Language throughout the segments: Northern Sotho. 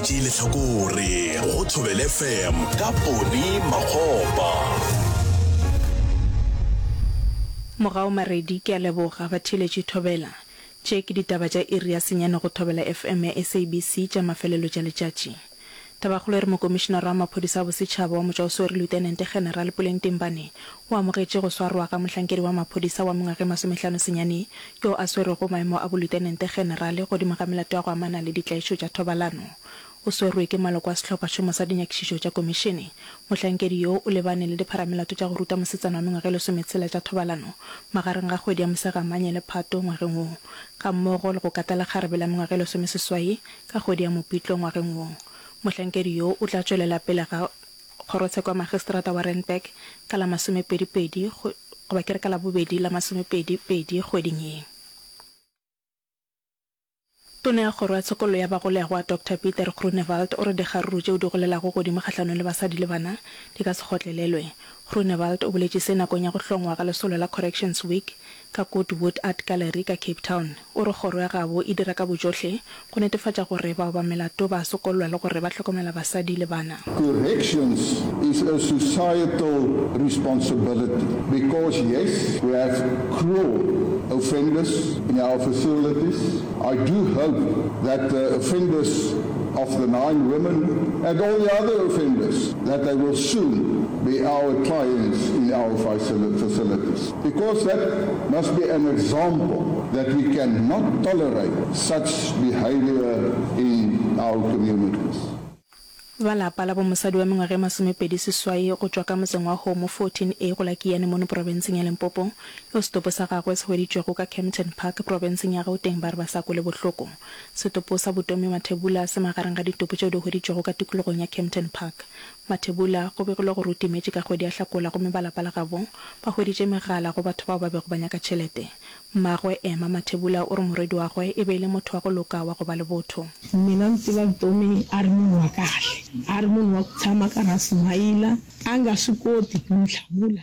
tšee lehlakore go thobel fm ka pone makgopa Mogao Maredi ke a leboga ba theeletše Thobela. Tše ke ditaba tša iri ya senyane go Thobela FM ya SABC tša mafelelo tša letšatši. Tabakgolo e re Mokomišinara wa Maphodisa a Bosetšhaba wa Motšwaoswere Lieutenant General Puleng Timbane o amogetše go swarwa ga mohlankedi wa maphodisa wa mengwaga e masomehlano senyane yo a swerego maemo a bolutenente-generale godimo ga melato ya go amana le ditlaišo tša thobalano. O swerwe ke maloko a sehlophašomo sa dinyakišišo tša komišene. Mohlankedi yo o lebane le dipharamelato tša go ruta mosetsana wa mengwaga e lesometshela tša thobalano magareng ga kgwedi ya Mosegamanye le Phato ngwageng wo, gammogo le go kata lekgarebe la mengwaga e lesomeseswai ka kgwedi ya Mopitlo ngwageng wo. Mohlankedi yo o tla tšwelela pele ga. Kgorotsheko ya Magistrata wa Randburg ka la masomepedi pedi goba ke re ka Labobedi la masomepedi pedi kgweding ye. Tona ya Kgoro ya Tshokollo ya Bagolegwa, Doctor Pieter Groenewald o re dikgaruru tšeo di golelago godimo kgahlanong le basadi le bana di ka se kgotlelelwe. Groenewald o boletše se nakong ya go hlongwa ga lesolo la Corrections Week ka Goodwood Art Gallery ka Cape Town, o re kgoro ya gabo e dira ka bojohle go netefatša gore ba oba melato ba a sokollwa le gore ba hlokomela basadi le bana. Corrections is a societal responsibility because yes we have cruel offenders in our facilities. I do hope that the offenders of the nine women and all the other offenders that they will soon be our clients in our facilities. Because that must be an example that we can not tolerate such behavior in our communities. Ba lapa la bo mosadi wa mengwaga e masomepedi seswai go tšwa ka motseng wa Homo 14A go la Kiyane mono profenseng ya Limpopo, yo setopo sa gagwe se hweditšwego ka Kempton Park profenseng ya Gauteng ba re ba sa kwele bohloko. Setopo sa Butomi Mathebula se magareng ga ditopo tšeo di hweditšwego ka tikologong ya Kempton Park. Mathebula go begilwe gore o timetše ka kgwedi ya Hlakola gomme ba lapa la gabo ba hweditše megala go batho bao ba bego ba nyaka tšhelete. Mmagwe, Emma Mathebula o re morwediwagwe e be e le motho wa go loka wa go ba le botho. Mina ndzi tiva Vutomi a ri munhu wa kahle, a ri munhu wa ku tshama a karhi a smiler, a nga swi koti ku ni hlamula.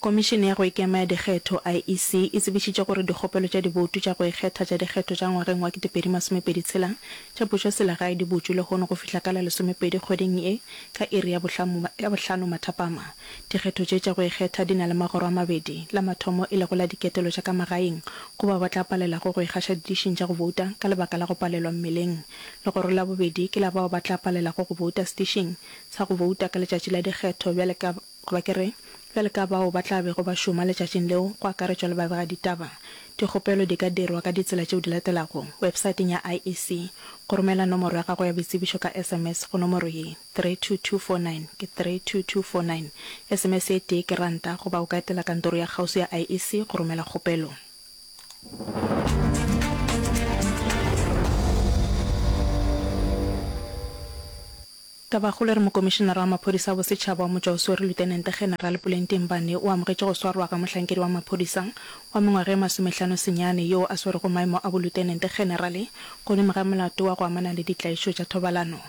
Komišene ya go Ikema ya Dikgetho, IEC, e tsebišitše gore dikgopelo tša diboutu tša go ikgetha tša dikgetho tša ngwageng wa 2026 tša pušoselegae di butšwe lehono go fihla ka la lesomepedi kgweding ye ka iri ya bohlano mathapama. Dikgetho tše tša go ikgetha di na le magoro a mabedi, la mathomo e lego la diketelo tša ka magaeng, go bao ba tla palelago go ikgaša didišing tša go bouta ka lebaka la go palelwa mmeleng. Legoro la bobedi ke la bao ba tla palelago go bouta sedišing sa go bouta ka letšatši la dikgetho bjale ka, goba ke re, bjale ka bao ba tla bego ba šoma letšatšing leo, go akaretšwa le babegaditaba. Dikgopelo di ka dirwa ka ditsela tšeo di latelago, websaeteng ya IEC, go romela nomoro ya gago ya boitsebišo ka sms go nomoro ye. 32249, ke 32249, sms e tee ke ranta, goba o ka etela kantoro ya kgauswi ya IEC go romela kgopelo. Tabakgolo e re Mokomišenara wa Maphodisa a Bosetšhaba wa Motšwaoswere Lutenente Generale Puleng Timbane o amogetše go swarwa ga mohlankedi wa maphodisa wa mengwaga e masomehlano senyane yoo a swerego maemo a Bolutenente Generale godimo ga molato wa go amana le ditlaišo tša thobalano